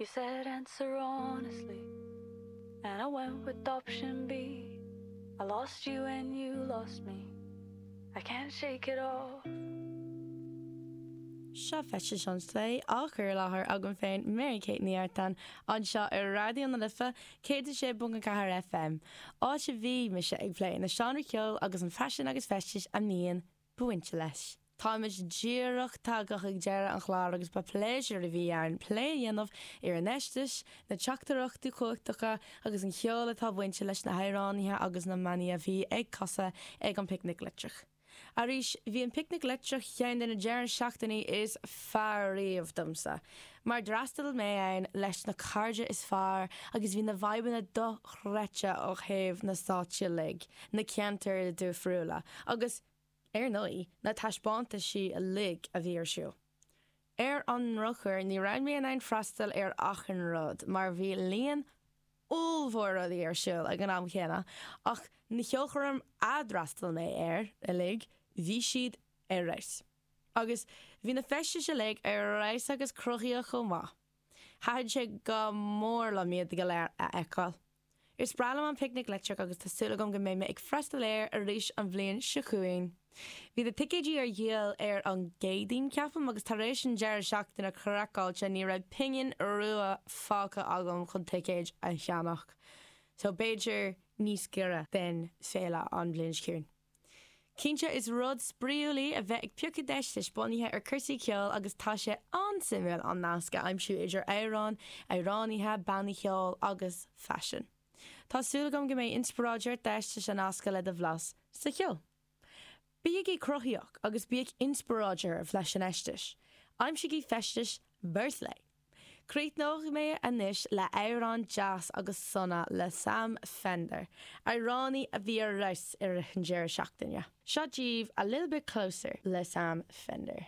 You said answer honestly And I went with option B I lost you and you lost me I can't shake it off Seo Feistis an Slay á chur i láthair agam féin Mary Kate Ní Artáin anseo ar Raidió na Life 106.4 FM, áit a bhí mise ag plé na seánra ceoil agus an faisean agus feistis a mbíonn bainte leis. Táimid díreach tagtha chuig deireadh an chláir agus ba pléisiúr a bhí ann plé a dhéanamh ar an fheistis, na teachtaireachtaí cumhachtacha agus an cheol atá bainte leis na hamhránaithe agus na mbannaí a bhí ag casadh ag an bPicnic Leictreach. Arís, bhí an Picnic Leictreach ceann de na deireadh seachtainí is fearr riamh domsa. Mar d'fhreastail mé ann leis na cairde is fearr agus bhí na vibeanna dochreidte ó thaobh na stáitsí uilig, na ceantair difriúla agus, ar ndóigh, na taispeántaisí uilig a bhí ar siúl. Ar an ndrochuair, ní raibh mé in ann freastal ar achan rud mar bhí líon ollmhór rudaí ar siúl ag an am céanna ach na ceolchoirm a d'fhreastail mé air uilig, bhí siad ar fheabhas. Agus bhí na feistis uilig ar fheabhas agus cruthaíoch chomh maith. Thaitin sé go mór liom iad go léir a fheiceáil. Is breá liom an Picnic Leictreach agus tá súil agam go mbeidh mé ag freastal air arís an bhliain seo chugainn. Bhí na ticéidí ar dhíol ar an gCéadaoin, ceapaim, agus tar éis an deireadh seachtaine craiceáilte ní raibh pingin rua fágtha agam chun ticéad a cheannach. So b'fhéidir níos giorra den féile an bhliain seo chugainn. Cinnte is rud spraíúil í a bheith ag piocadh d'fheistis bunaithe ar cúrsaí ceoil agus tá sé an-suimiúil an nasc a aimsiú idir amhráin, amhránaithe, bannaí cheoil agus faisean. Tá súil agam go mbeidh inspioráid ort d'fheistis a nascadh le do bhlas sa cheol. Bígí cruthaíoch agus bíodh inspioráid oraibh leis an fheistis. Aimsígí feistis bhur slay! Críochnóidh mé anois le amhrán deas agus sona le Sam Fender, amhránaí a bhí ar fheabhas i rith an deireadh seachtaine. Seo díbh A Little Bit Closer le Sam Fender.